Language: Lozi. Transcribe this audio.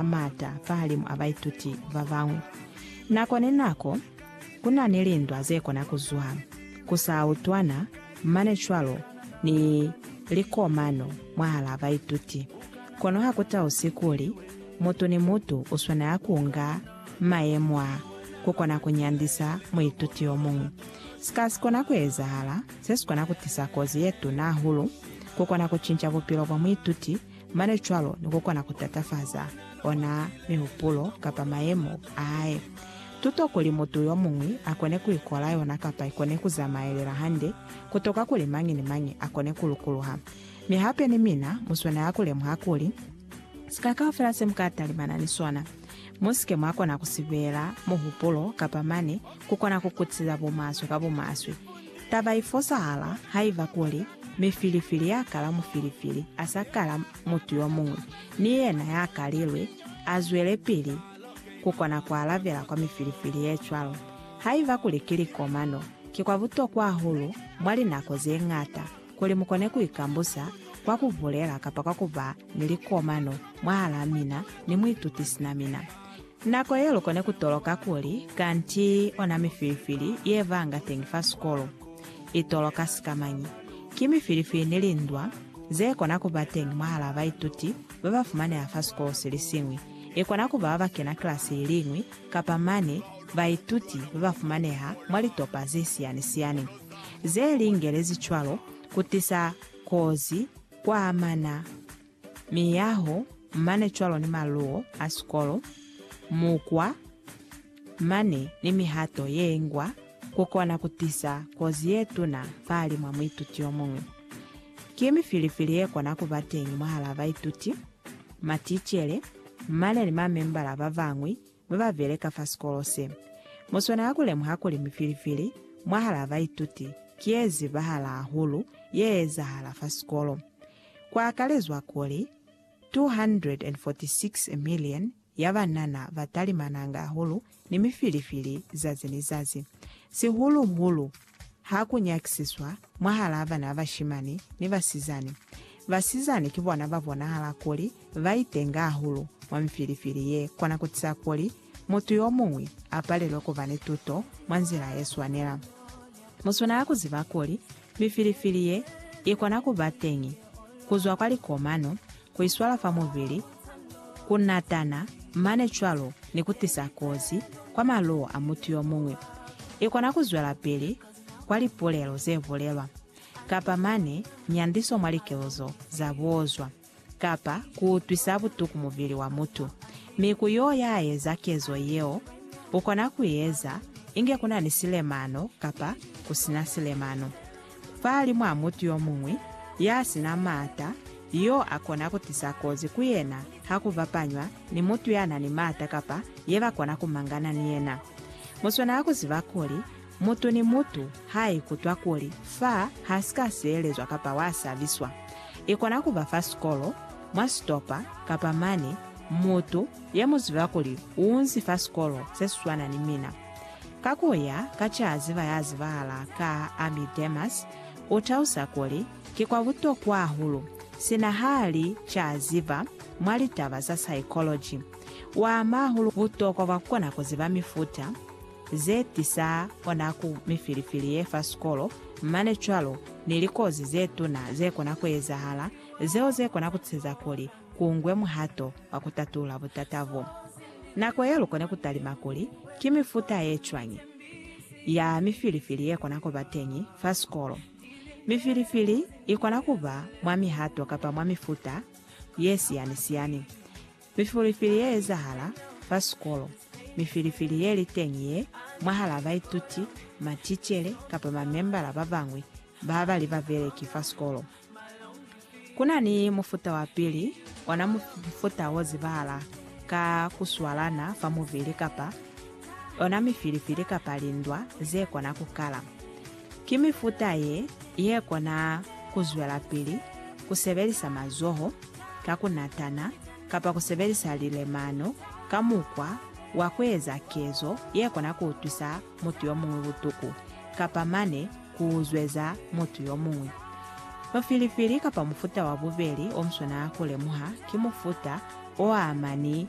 a maata fahalimu a baituti ba bañwi. Nako ni nako, ku na ni lindwa ze kona ku zwa, ku sa utwana mane cwalo ni likomano mwahalaa baituti. Kono ha ku tausi kuli mutu ni mutu u swanela ku nga mayemo a ku kona ku nyandisa muituti yo muñwi. Sika si kona ku ezahala se si kona ku tisa kozi ye tuna hahulu ku kona ku cinca bupilo bwa muituti Mane cwalo ni ku kona ku tatafaza ona mihupulo kapa mayemo a hae. Tuto kuli mutu yo muñwi a kone ku ikola yona kapa i kone ku zamaelela hande ku toka kuli mañi ni mañi a kone ku lukuluha. Mi hape ni mina mu swanela ku lemuha kuli, sika kaufela se mu ka talimana ni sona, mu si ke mwa kona ku si beela muhupulo kapa mane ku kona ku kutisiza bumaswe ka bumaswe. Taba i fosahala haiba kuli mifilifili ya kala mufilifili a sa kala mutu yo muñwi, ni yena ya kalilwe a zwelepili ku kona ku alabela kwa mifilifili ye cwalo. Haiba kuli ki likomano, ki kwa butokwa hahulu mwa linako ze ñata kuli mu kone ku ikambusa kwa ku bulela kapa kwa ku ba ni likomano mwahalaa mina ni muituti sina mina. Nako ye lu kone ku toloka kuli kanti ona mifilifili ye vanga teñi fa sikolo i toloka sika mañi. Ki mifilifili ni lindwa ze kona ku ba teñi mwahalaa baituti ba ba fumaneha fa sikolo si li siñwi, i kona ku ba ba ba kena kilasi i li ñwi kapa mane baituti ba ba fumaneha mwa litopa ze siyani-siyani ze lingelezi cwalo ku tisa kozi kwa mana Miyaho, mane cwalo ni maluo a sikolo, mukwa, mane ni mihato ye ngwa ku kona ku tisa kozi ye tuna fahali mwa muituti yo muñwi. Ki mifilifili ye kona ku ba teñi mwahalaa baituti, maticele, mane ni mamembala ba bañwi mi ba beleka fa sikolo se. Mu swanela ku lemuha kuli mifilifili mwahalaa baituti ki ye zibahala hahulu ye ezahala fa sikolo. Ku akalezwa kuli, 246 million ya banana ba talimananga hahulu ni mifilifili zazi ni zazi, sihulu-hulu Ha ku nyakisiswa mwahalaa bana ba bashimani ni basizani, basizani ki bona ba bonahala kuli ba itenga hahulu mwa mifilifili ye kona ku tisa kuli mutu yo muñwi a palelwe ku ba ni tuto mwa nzila ye swanela. Mu swanela ku ziba kuli mifilifili ye i kona ku ba teñi ku zwa kwa likomano ku iswala fa mubili, ku natana, mane cwalo ni ku tisa kozi kwa maluwo a mutu yo muñwi. I kona ku zwelapili kwa lipulelo ze bulelwa, kapa mane nyandiso mwa likezo za buozwa, kapa ku utwisa butuku mubili wa mutu. Mi ku yo ya eza kezo yeo, u kona ku i eza inge ku na ni silemano kapa ku si na silemano. Fali mwa mutu yo muñwi ya si na maata yo a kona ku tisa kozi ku yena ha ku bapanywa ni mutu ya na ni maata kapa ye ba kona ku mangana ni yena. Mu swanela ku ziba kuli, mutu ni mutu ha a ikutwa kuli fa ha si ka sielezwa kapa wa sabiswa, i kona ku ba fa sikolo, mwa sitopa, kapa mane, mutu ye mu ziba kuli u unzi fa sikolo se si swana ni mina. Ka ku ya ka c'a ziba ya zibahala ka Ami Demas, u talusa kuli, Ki kwa butokwa hahulu, sina ha li c'a ziba mwa litaba za saekoloji. U ama hahulu butokwa bwa ku kona ku ziba mifuta ze tisa ona ku mifilifili ye fa sikolo mane cwalo ni likozi ze tuna ze kona ku ezahala, zeo ze kona ku tiseza kuli ku ngwe muhato wa ku tatula butata bo. Nako ye lu kona ku talima kuli ki mifuta ye cwañi ya mifilifili ye kona ku ba teñi fa sikolo. Mifilifili i kona ku ba mwa mihato kapa mwa mifuta ye siyani-siyani. Mifilifili ye ezahala fa sikolo, mifilifili ye li teñi ye mwahal'a baituti, maticele, kapa mamembala ba bañwi ba ba li babeleki fa sikolo. Ku na ni mufuta wa pili, ona mufuta wo zibahala ka ku swalana fa mubili kapa yona mifilifili kapa lindwa ze kona ku kala. Ki mifuta ye ye kona ku zwelapili ku sebelisa mazoho ka ku natana kapa ku sebelisa lilemano ka mukwa wa ku eza kezo ye kona ku utwisa mutu yomuñwi butuku, kapa mane ku uzweza mutu yomuñwi. Mufilifili kapa mufuta wa bubeli omuswanaa ku lemuha ki mufuta oamani